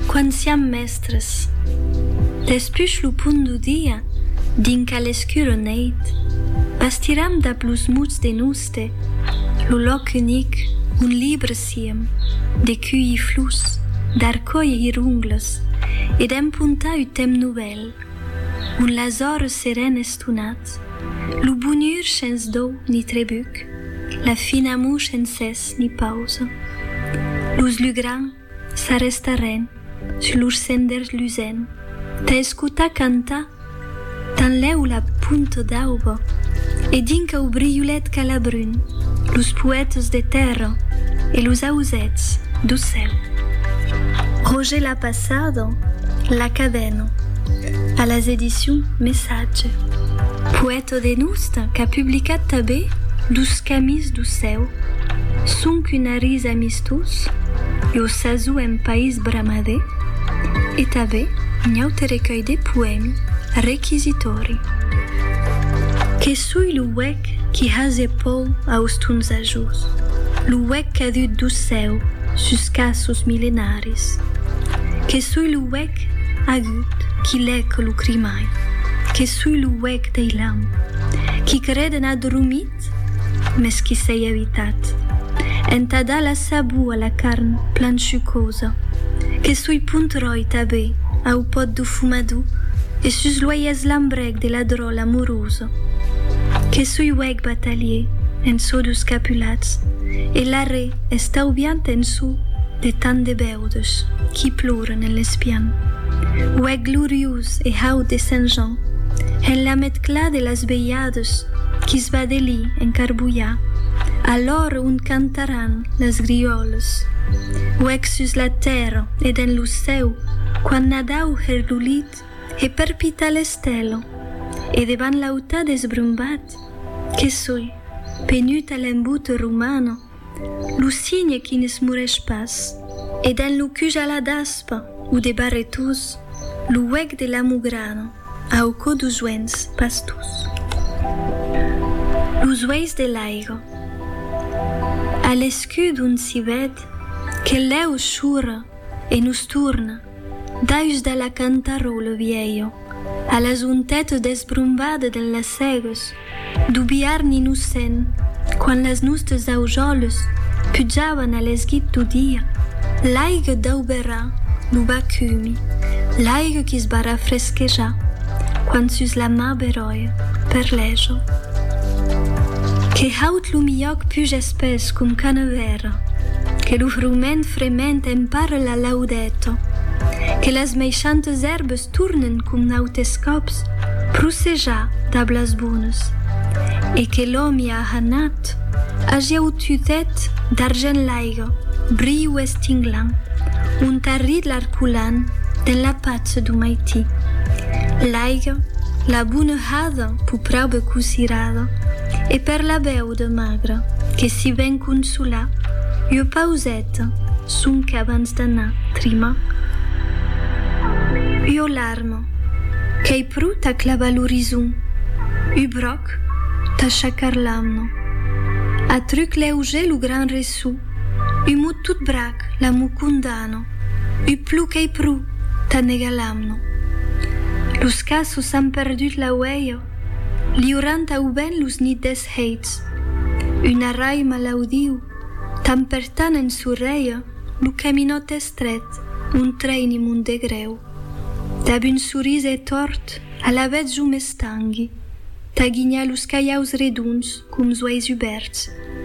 Quan siam mèstres. Despuch lo punt du dia, dinca l'escura neit, bastiram dab los muts de Nouste lo lòc unic on libres siem de cuilhir flus, d'arcòir hirongles e d'empontar ut temps novèl, on las ores seren estonat, lo bonur shens dòu ni trebuc, la fin amor shens es. Ni pausa. Los lugrans s'arrestaren sus lors senders lusent tà escotar cantar tanlèu la punta d'auba e dinca o briulet calabrun los poètas de tèrra e los ausèths do cèu. Roger l'a passada, La Cabena, a las Edicions Messatge, poèta Todenust qu'a publicat tabé Dos camis do cèu, sonc un arís amistós, Lo sasó en país bramadé e tabé un aute recuelh de poèmi requisitòri. Que soi lo uec qui hase pòu aus tons ajós, Lo uec cadut do cèu sus caços milenaris. Que soi lo uec Agut, qui lèc lo crimai, que sui lo huec dei lam, qui creden adormit, mes qui s'ei avitat, entà dar la sabor a la carn plan chucosa, que sui punt ròi tabé au pòt do fumador e sus lo aiès lambrèc de la dròl amorosa, que sui huec batalier en çò dos capulats e l'arrè estaubiant en çò de tant de bèu. Totes qui ploren en l'espian. Uèc gloriós e haut de Sent Jan, en la metcla de las velhades qui s va d'eli en Carbolhà, a l'ora ont cantaràn las griòles. Uèc sus la tèrra e dens lo cèu, quand Nadau hèr lo lit e perpitar l'estèla, e devant l'autat esbrumbat, que soi, penuta l'embute romana, Lo cigne qui ne s'murèsh pas, e dens lo cuj a la daspa o de barretós, lo huec de l'amo grana, au cò dous uens pastós. Los uelhs de l'aiga. A l'escut on s'i ved que l'èu chora e nos torna. Daus de la cantarró lo vielho, a las ontetes desbrombades de las sègues, du biarn innocent, quand las nostes aujoles pujavan a l'esguit du dia, l'aigue dau berrà lo bacumi, l'aigue qui's va rafresquejar, quand sus la mar beròia, per lèjo. Que haut lo milhòc puges Pes com Canevera, que lo frument frement empara la laudèta, que las meishantes èrbes tornen com nautes còps prosejar dab las bones, e que l'òmi ahanat agia aututèt d'argent l'aiga briu estinglan, ont arrit l'arculan den la patz du maití. L'aiga, la bonehada, pus praube cosirada, E per la vèu de Magre, que si ven consolar, ua pauseta, sonque abans d'anar trimar. Ua larma, qu'ei pro tà clavar l'orizon, u bròc, tà shacar l'amna. A truc lèuger lo gran ressò, u mot tot brac la mo condana, u plou qu'ei pro tà negar l'amna. Los qu'açò s'an perdut la uèia, Liurant auben los nits des heits. Un arrai malaudiu, tan per tan en sorrèia lo caminòt estrèt ont trèini mon degrèu. Dab un sorís e tòrt, alavetz jo m'estangui, tà ginhar los calhaus redonds com zoais ubèrts.